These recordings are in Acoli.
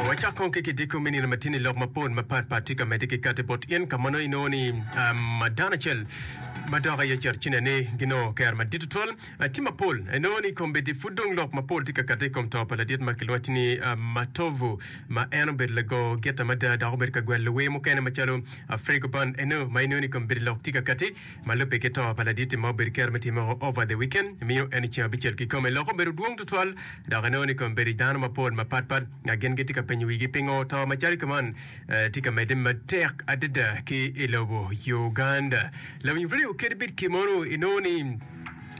Wacak kong ki kidiko me nino matini lok mapol mapat pat tye ka medde ki kati bot in ka mono inongo ni um, dano acel madok aye cito cine ni ginongo kero madit tutwal ah, tye mapol inongo ni kombeddi pud dong lok mapol tye ka kati i kom to pa ladit ma kilwacci ni ah, Matovu ma en obedo lago gita mada dok obedo ka gwel luwee mukene macalo ah, Fregoban eno ma inongo ni kombeddi lok tye ka kati ma lubbe ki to pa laditti ma obedo kero me time o over the weekend miyo en i ceng abicel kikome loko obedo dwong tutwal dok inongo ni kome bedo i dano mapol mapat pat nga gin gitye ka penyo wigi pingo to macalo kuman eh, tye ka medde matek adada ki i lobo Uganda. Lawiny radio kede bit kimono inongo ni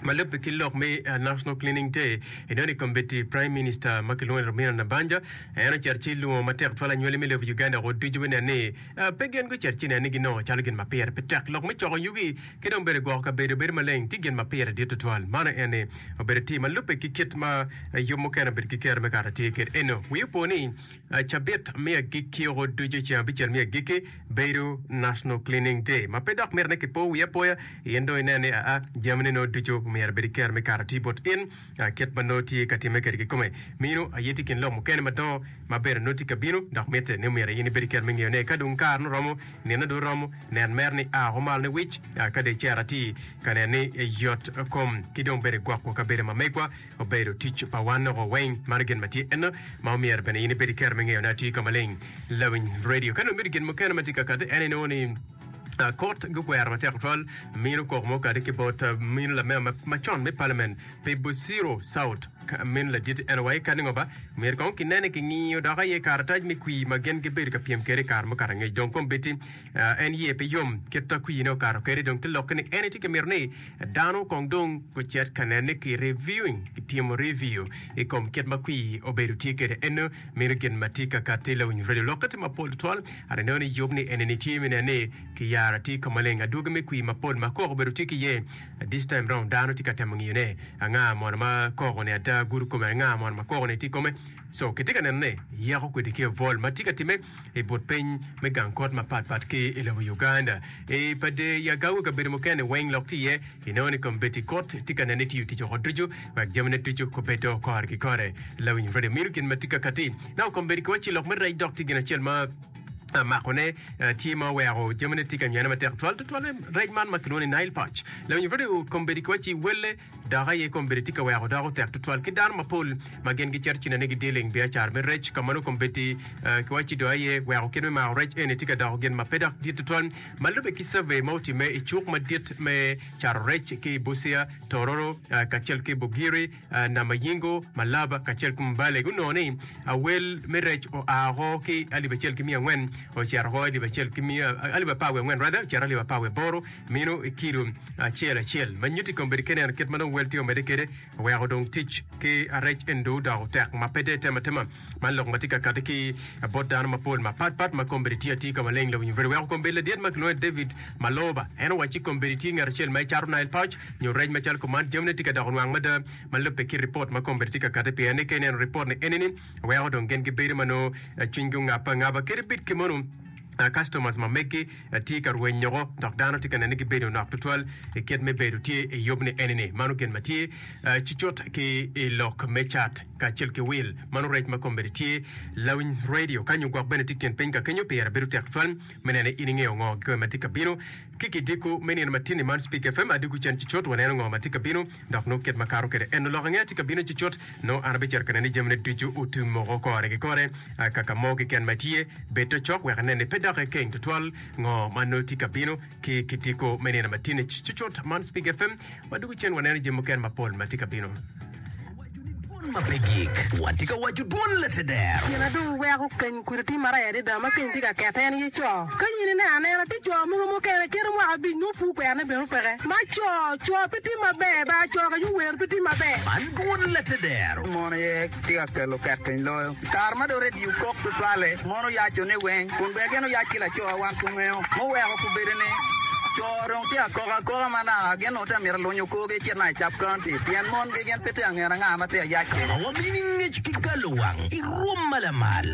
ma lubbe ki lok me eh, National Cleaning Day inongo ni kombeddi Prime Minister ma kilwongo ni Romina Nabanja en ocito ci lungo matek twal anywali me lobo Uganda woko ducu me nen ni Pe gin gucit ci nenigi nongo calo gin ma pire pe tek lok me coko yugi ki dong bedo gwoko kabedo bedo maleng tye gin ma pire dit tutwal. Mano en ni, obedo tim ma lubbe ki kit ma yub mukene obedo ki kero me kato atir kit eno. Wi opo ni, cabit me agikki oko ducu ceng abicel me agikki bedo National Cleaning Day, ma pe dok miti ni kipo wiye apoya in dong inen ni aa, jamine no ducu omyero bedi kero me kato atir bot in. Ka kit ma nongo tye ka timme kede kikome, mino aye tye kin lok mukene madongo ma ber nongo tye ka bino. Dok mitte ni omyero in ibed ki kero me ngeyone. Ka dong kare-nu romo, nino dong romo, nen mere ni a woko malo niwic, ka dong icero atir ka neno ni yot kom ki dong bene gwoko kabedo ma megwa obedo tic pa wan woko weng. Mano gin ma tye enno ma omyero bene in ibed ki kero me ngeyone atir ka maleng. Lawiny Radio. Ka nongo ibedo gin mukene ma tye ka kati, en aye nongo ni. Kot gukwero matek tutwal mino kok mo kadi ki bot mino lamema macon me Parliament pi Busiro South min ladit NY kadi ngo ba myero kong kinene kingiyo dok aye karatac me kwi ma gin gibedo ka pyem kede kare mukato angec dong kombiti en ye pe yom kit ta kwi ne okato kede dong te lokke ni ene tye ka mito ni dano kong dong gucet ka nene ki reviewing ki timo review i kom kit ma kwi obedo tye kede eno mino gin ma tye ka kati lawiny radio lokke tye mapol twal Aneno ni yub ni enini tye me nen ni ki yaro atir ka maleng adwogi me kwir mapol ma koko obedo tye ki iye. This time round dano tye ka temo ngiyo ne anga mono ma koko ni ada gudo kome anga mono ma koko ni tye ikome. So kitye ka neno ne yako kwede ki obwol ma tye ka time i but piny me gang kot mapat pat ki ilobo Uganda. I pa de Yagawi kabedo mukene weng lok tye iye. Kinongo ni kombeddi kut tye ka nene ni tiyo tic woko ducu wek jamine ducu kubed dong okore ki kore. Lawiny redio mino gin ma tye kakati. Nongo kombeddi ki wacci lok me rec dok tye gin acel ma ah, makone ah, tye ma oweko jamine tye ka nyane matek twal tutwalle rec man ma kilwongo ni Nile perch. Lawiny redio kombeddi ki wacci welle dok aye kombeddi tye ka weko doko tek tutwal ki dano mapol ma gin gicito ci nene gidealing biacara me rec. Ka mano kombeddi ah, ki wacci dong aye weko kit me mako rec eni tye ka doko gin ma pe dok dit tutwal. Ma lubbe ki cavey ma otimme i cuk madit me cato rec ki i Busia, Tororo, kacel ki Bugiri, Namayingo, Malaba, kacel ki Mbale, gunongo ni awel me rec oa oko ki alip acel ki miya angwen ocito oko alip acel ki miya alip apar wiye angwen rather ocito alip apar wiye boro mino i kilo acel acel ma nyuto i kom bedo keneno kit ma dong wel tye omedde kwede Oweko dong tic ki arec endo odoko tek ma pe de tema tema. Man lok ma tye ka kati ki bot dano mapol mapat pat ma kombeddi tye atir ka maleng lawinyo bute. Oweko kombeddi ladit ma kilwongo ni David Maloba en owacci ci kombeddi tye ngat acel ma ecato Nile pouch nyo rec macalo ko man jamine tye ka doko nwang mada ma lubbe ki ripot ma kombeddi tye ka kati piyeni. Ka ineno ripot ni enini weko dong gin gibedo ma nongo cwinygi ongabbe angaba kadi bit kemonu. customers ma megi tye ka rweny nyoko dok dano tye ka nene gi bedo nok tutwal i kit me bedo tye i yub ni eni ni mano gin ma tye cucut ki i lok me cat kacel ki wil mano rec ma kombedi tye lawiny radio ka nyo gwok bene tye kin piny ka kenyo pire bedo tek twal me nene in ingeyo ngo kikome ma tye ka bino ki ki diko me nino ma tini man speak fm adiko cen cucut waneno ngo ma tye ka bino Dok nongo kit ma akato kwede en oloko angea tye ka bino cucut, nongo an abicito ka neno ni jamine ducu otum moko kore ki kore. Akaka mo keken ma itye, bed te cok wek inen ni pe dok ikeng tutwal ngo ma nongo tye ka bino ki kitiko me nino ma tye-ni cucut. Man Speak FM ma dwogo cen waneno jami mukene mapol ma tye ka bino. Dwon ma pe gik, watye ka waco dwon Latedero. Pien adong iweko keny kodi ti maraya adada ma keny tye ka kette en ye co. Ka in ineno anena tye co mogo mukene kite mwaka abic nyo pur kwero ne bene opeke ma co co pe tim maber ba co ka yo wer pe tim maber. Man dwon Latedero. Mon aye tye ka kelo kekeny loyo. Kare ma dong redio kok tutwalle, mon oyaco ne weng kun bene gin oyac ki lacowa wan kungeyo muweko ku bedo ni co dong tye akoka akoka ma naka gin ongo tye amito alunyo korgi ecit naka i sub county pien mon gi gin pe tye angen anga ma tye ayac kene. Wabino i ngec ki galo wang i rwom ma lamal.